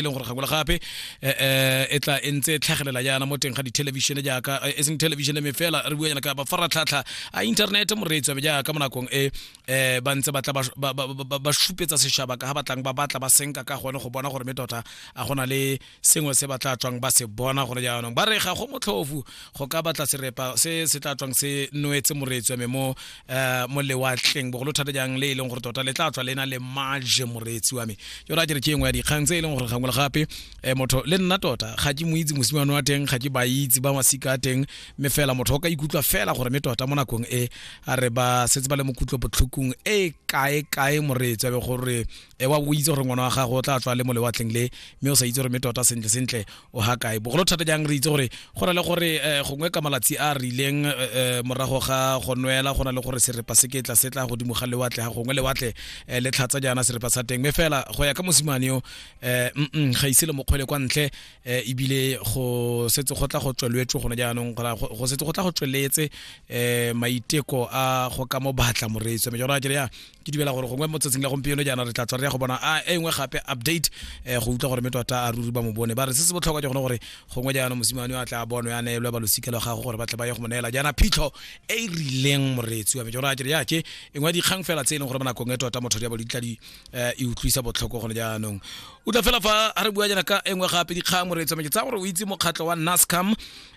e leng gore gakola gape eh, eh, e tla e ntse e tlhagelela jaana mo teng ga dithelebišene jaaka eh, e seng thelebišene me fela re bua yana ka mafaratlhatlha a inthanete moreetsi wabe jaaka mo nakong e um ba ntse ba tla ba- ba- ba- ba- ba šupetsa sešaba ka ga batlang ba batla ba senka ka gone go bona gore me tota a gona le sengwe se ba tla tswang ba se bona gore jaanong ba re ga go motlhofu go ka batla serepa se se tla tswang se noetse moreetsi wa me mo eh mo lewatleng bogolo thata jang le e leng gore tota le tla tswa le na le maje moreetsi wa me yo ra kere ke engwe ya dikgang tse e leng gore gangwe le gape um motho le nna tota ga ke mo itse mosimane wa teng ga ke ba itse ba masika a teng mme fela motho o ka ikutlwa fela gore mme tota mo nakong e a re ba setse ba le mo kutlo botlhokong e kae kae moreetsi wa be gore e wa go itse gore ngwana wa gago o tla tswa le mo lewatleng le mme o sa itse gore mme tota sentle sentle o ga kae bogolo thata jang re itse gore go na le gore eh, gongwe ka malatsi a rileng eh, eh, morago ga go nwela go na le gore serepa se ketla se tla godimo ga lewatle ga gongwe lewatle le tlhatsa jaana serepa sa teng mme fela go ya ka mosimane yo um ga ise le mokgwele kwa ntle ebile go setse go tla go tsweletswe gone jaanong go setse go tla go tsweletse um maiteko a go ka mo batla moreetso mme jona ke ya ke dumela gore gongwe mo tsatsing la gompieno jaana re tla tswa re ya go bona a e nngwe gape update um go utlwa gore mme tota a ruri ba mo bone ba re se se botlhokwa ke gone gore gongwe jaana mosimane o a tla bono ya neelwe ba losika la gago gore ba tle ba ye go mo neela jaana phitlho e e rileng moreetsi wa me jona a kere yake e nngwe dikgang fela tse e leng gore mo nakong e tota motho ya balo ditla di um e utlwisa botlhoko gone jaanong o tla fela fa a re bua jaana ka e nngwe gape dikgang moreetsi wa me ke tsaya gore o itse mokgatlho wa nascam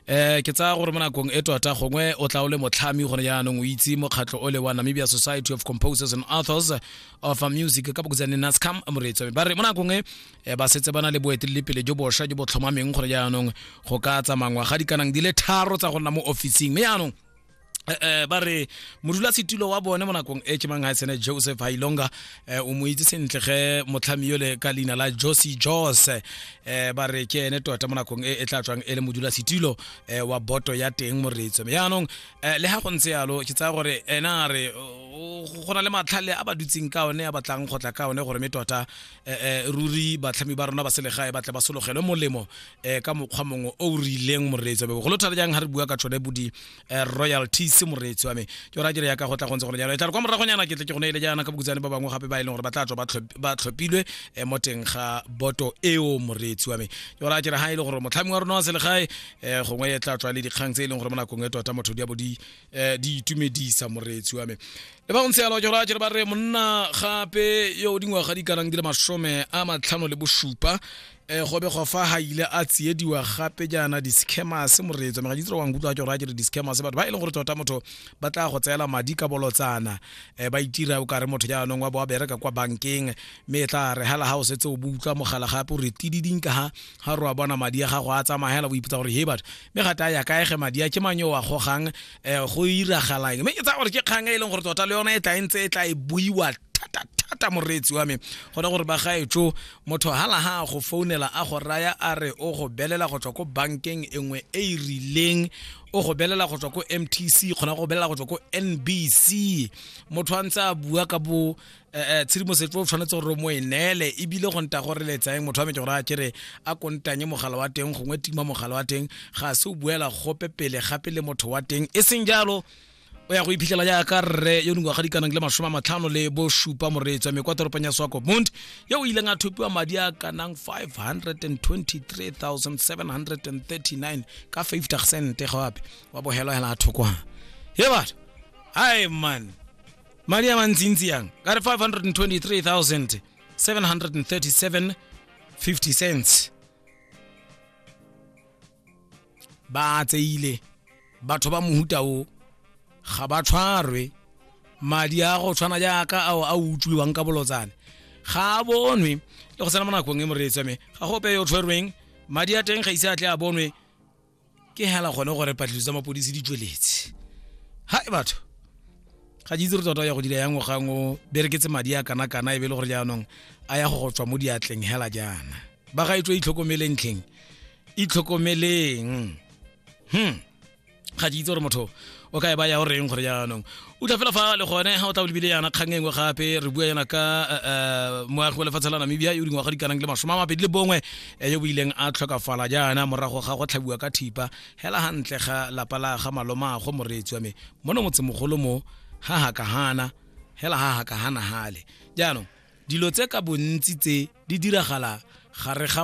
eh ke tsaya gore mo nakong e tota gongwe o tla o le motlhami gone jaanong o itse mokgatlho o le wa namibia society of composers and authors of music ka bokotsane nascam moreetso ba re mo nakong e eh, ba setse ba na le boeteledipele jo bosha jo bo tlhomameng gone jaanong go ka tsamangwa ga dikanang di le tharo tsa go nna mo officing mme jaanong eh, eh, ba re modulasetilo wa bone mo nakong e ke mang sene joseph hailonga eh, o mo itse sentle ge motlhami yole ka leina la josi jos eh, ba re ke ene tota mo nakong e e tla tswang e le modulasetilo eh, wa boto ya teng moretso me yaanong eh, le ga go ntse yalo ke tsaya gore ena re go na le matlhale a ba dutseng ka one a batlang go tla ka one gore me tota eh, eh, ruri batlhami ba rona ba selegae ba tle ba sologelwe molemo eh ka mokgwa mongwe o o rileng moreetsi wa me bogolo thata jang ga re bua ka tshone bo di eh, royalties moreetsi wa me ke ora kere yaka go tla go ntse gone jalo e tla re kwa moragonyana ke tle ke gone ile jaana ka bokutsane ba bangwe gape ba e leng gore ba tla tswa ba tlhop- ba tlhophilwe eh, mo teng ga boto eo moreetsi wa me ke ora kere ga e le gore motlhami wa rona wa selegae eh, gongwe e tla tswa le dikgang tse e leng gore mo nakong e tota motho di a bo di eh, di itumedisa moreetsi wa me le ba go ntse yalo ke gore a kere ba re monna gape yo o dingwaga di kanang di le masome a matlhano le bosupa e go begwa fa ga ile a tsiediwa gape jaana di-scammers moreetso mega ditiro wa nkutlwa ke gore a kere di-scammers batho ba e leng gore tota motho ba tla go tseela madi ka bolotsana um ba itira o kare motho jaanong wa bo wa bereka kwa bankeng mme e tla re hela ga o setse o bo utlwa mogala gape o re tididing ka ga ga re wa bona madi a gago a tsamagela bo ipotsa gore he batho mme gate a ya kaege madi a ke mang yo wa gogang um go iragalang mme ke tsaya gore ke kgang e e leng gore tota le yona e tla e ntse e tla e buiwa thata thata moreetsi wa me gona gore bagaetso Motho hala ha a go founela a go raya a re o go belela go tswa ko bankeng e nngwe e e rileng o go belela go tswa ko mtc kgona go belela go tswa ko nbc motho a ntse a bua ka bo eh, eh, tshedimosetso o tshwanetse gore mo e neele ebile go nta gore letsaeng motho wa me ke gore a kere a kontanye mogala wa teng gongwe tima mogala wa teng ga se o buela gope pele gape le motho wa teng e seng jalo o ya go iphitlhela jaaka rre yo dingwaga di kanang le masome a matlhano le bosupa moreetswa me kwa toropong ya swakopmund yo o ileng a thopiwa madi a kanang 523739 ka 50 sente gape wa bohelwahela a thokwana he batho hai man madi a mantsintsi yang ka re 523737 50 cents ba tseile batho ba mohuta o ga ba tshwarwe madi a go tshwana jaaka ao a utswiwang ka bolotsane ga a bonwe le go tsena mo nakong e moreetsa me ga go ope yo tshwerweng madi a teng ga ise a tle a bonwe ke hela gone gore patlhiso tsa mapodisi di tsweletse ha e batho ga ke itse re tota ya go dira ya ngwagang o bereketse madi a kana-kana e be e le gore jaanong a ya go go tswa mo diatleng hela jaana ba ga e tswe itlhokomeleng tlheng itlhokomeleng hmm ga ke itse gore motho o ka e ba ya o reng gore jaanong o tla fela fa le gone ga o tla bolebile yana kgang e nngwe gape re bua yana ka eh, eh, moagi wa lefatshe la namibia yo dingwaga di kanang le masome a mabedi le bongwe eh, yo boileng a tlhokafala jaana morago ga go tlhabiwa ka thipa hela gantle ga lapa la ga malomago moreetsi wa me mono motsemogolo mo ga hakagana hela ga hakagana gale jaanong dilo tse ka bontsi tse di diragala gare ga